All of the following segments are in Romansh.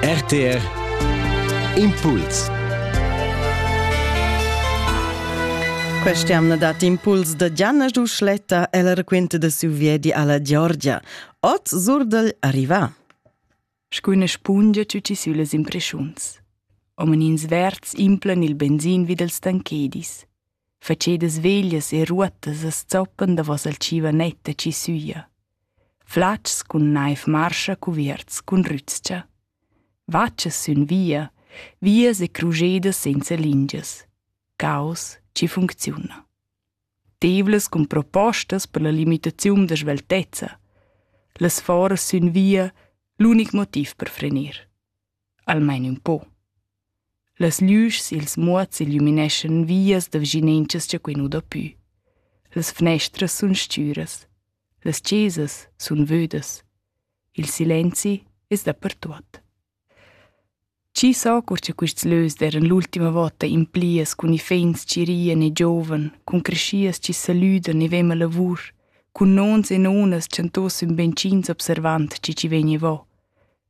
RTR Impuls Quest'jamna dat impuls da Gianna Duschletta e la raquinta da siu viedi alla Georgia. Ot surdel arriva. Scu üna spungia tutti sülas impreschuns. Omen ins verds implan il benzin vid els tanchedis. facedas veglias e ruottas as zoppan davos al tschievanet da chi süja. Flatgs cun naiv marscha cuvierts cun rüzcha. Vatschas sün via, vias e crujedas senza lingias. Caos chi funcziuna. Tevlas cun propostas per la limitaziun da sveltezza. Las foras sün via, l'unic motiv per frenir. Almain ün po. Las lüschs i'ls muots illumineschan vias da vischinanzas cha quai nu dà pü. Las fnestras sun stüras. Las chesas sun vödas. Il silenzi es dapertuot. Chi sa cur cha quists lös d'eiran l'ultima vota implias cun iffaints chi rian e giovan, cun creschias chi salüdan e vema lavur, cun nons e nonas chantos ün beinch'ins observand chi chi vegni vo.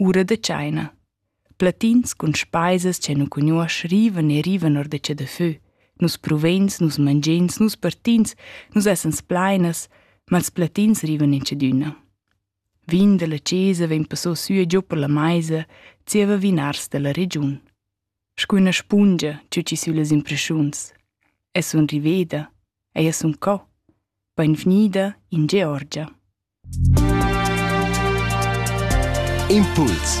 Ura da tscheina. Platins cun speisas che nu cugnuosch rivan e rivan or da che da fö. Nus pruveins, nus mangiins, nus partins, nus essan splainas, ma ils platins rivan in tschedüna. Vin dalla chesa vegn passò süa giò per la maisa, zieva vinars dalla regiun. Scu üna spungia tü chi sülas impreschuns. Es sun riveda, ella sun co. Bainvgnida in Georgia. Impuls